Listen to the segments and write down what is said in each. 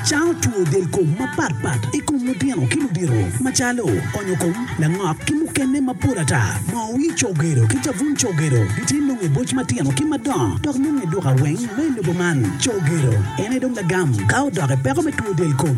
Cango two del kom mapat pat i kom lutino ki ludito macalo onyo kom, langok ki mukene mapol ata. Moo wii cogedo ki cabun cogedo gitye nonge boc matino ki madongo dok nonge duka weng me lobo man. Cogedo en aye dong lagam ka odoke peko me two del kom.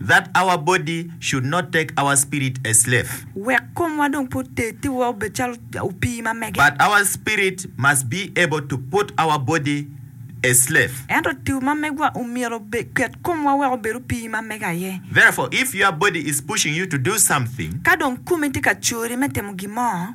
That our body should not take our spirit a slave. Wek komwa dong pe oteddi wa obed calo opii ma mege. But our spirit must be able to put our body a slave. Ento tiwu ma megwa omyero oket komwa wek obed opii ma mege aye. Therefore, if your body is pushing you to do something. Ka dong komi tye ka cori me timo gin mo.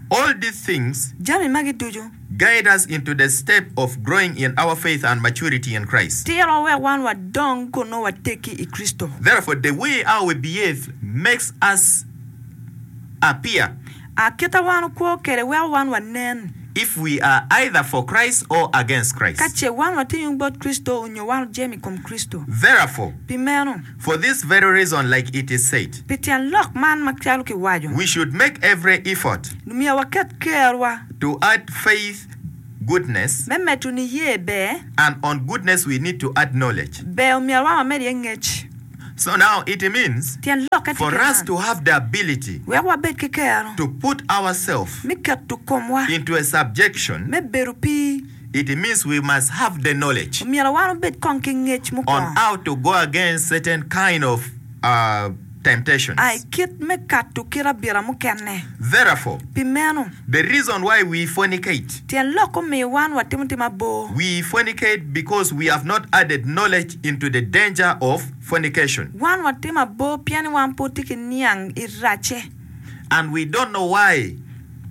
All these things Jami magi ducu. guide us into the step of growing in our faith and maturity in Christ. Tirowa wek wan wadong kun nongo wateggi i Kricito. Therefore, the way how we behave makes us appear. A Kite wan okwo kwede weko wan wanen. If we are either for Christ or against Christ. Ka ce wan watye yung bot Kricito onyo wan ojemo i kom Kricito. Therefore. Pi meno. For this very reason, like it is said. Pi tyen lok man ma calo kiwaco. We should make every effort. Myero waket kerwa. To add faith, goodness. Me medo niye ber. And on goodness we need to add knowledge. Ber omyero wa wamed iye ngec. So now it means. Tyen lokke tye kit man. For us to have the ability. Wek wabed ki kero. To put ourselves. Me keto komwa. Into a subjection. Me bedo pi. It means we must have the knowledge. Omyero wan obed kong ki ngec mo On kong. how to go against certain kind of temptations. A i kit me kato kit abira mukene. Therefore. Pi meno. The reason why we fornicate. Tyen lok omiyo wan watimo tim abor. We fornicate because we have not added knowledge into the danger of fornication. Wan watimo abor pien ni wan pud tye ki niang i racce. and we don't know why.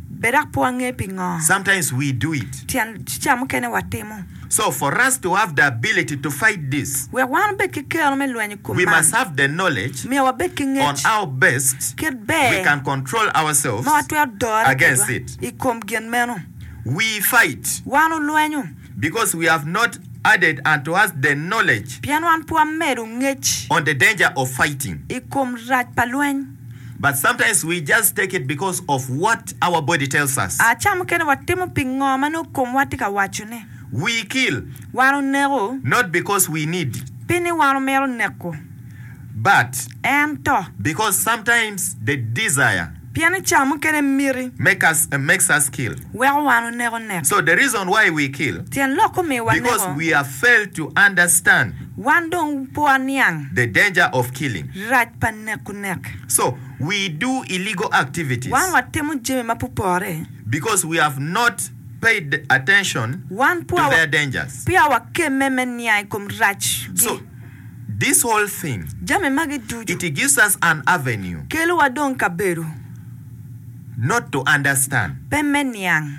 Bed dok pe wange pingo. Sometimes we do it. Tyen ca mukene watimo. So for us to have the ability to fight this. Wek wan wubed ki kero me lweny i kom man. We must have the knowledge. Myero wabed ki ngec. On how best. Kit ber. We can control ourselves. Ma watwero dore. Against it. I kom gin meno. We fight. Wan wulwenyo. Because we have not added unto us the knowledge. Pien wan pe wamedo ngec. On the danger of fighting. I kom rac pa lweny. but sometimes we just take it because of what our body tells us. A Ca mukene watimo pi ngo ma nongo komwa tye ka wacone. We kill. Wan oneko. Not because we need. Pi ni wan omito neko. But. Ento. Because sometimes the desire. Pien ni ca mukene miti. Make us, makes us kill. Weko wan oneko neko. So the reason why we kill. Tyen lok omiyo waneko. Because we are failed to understand. Wan dong po aniang. The danger of killing. Rac pa neko nek. So, we do illegal activities. Wan watimo jami ma pe opore. Because we have not paid attention to their dangers. Peya wakemme me niang i kom racgi. So, this whole thing. Jami magi ducu. It gives us an avenue. Kelowa dong kabedo. Not to understand. Pe me niang.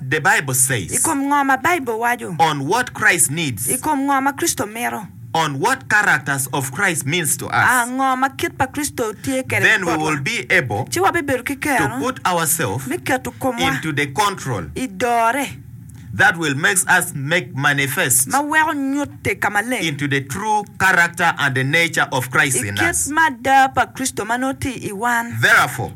the Bible says. I kom ngo ma Baibul waco. On what Christ needs. I kom ngo ma Kricito mito. On what characters of Christ means to us. A ngo ma kit pa Kricito tye kede Then we botwa. will be able. Ci wabibedo ki kero. To put ourselves. Me keto komwa. Into the control. I dore. That will makes us make manifest. Ma weko nyutte ka maleng. Into the true character and the nature of Christ in us. I kit mada pa Kricito ma nongo tye i wan. Therefore.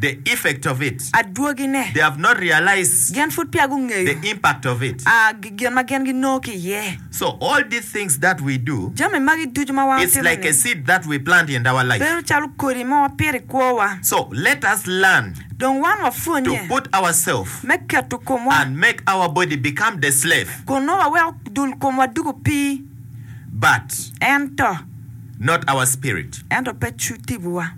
The effect of it. Adwogine. They have not realized. Gin pud peya gungeyo. The impact of it. A, gin ma gin ginongo ki iye. So, all these things that we do. Jami magi ducu ma wan watimo-ni. It's like a seed that we plant in our life. Bedo calo kodi ma wapito i kwowa. So, let us learn. Dong wan wapwonnye. To put ourselves. Me keto komwa. And make our body become the slave. Kun nongo waweko dul komwa doko opii. But. Ento. Not our spirit. Ento pe tipo-wa.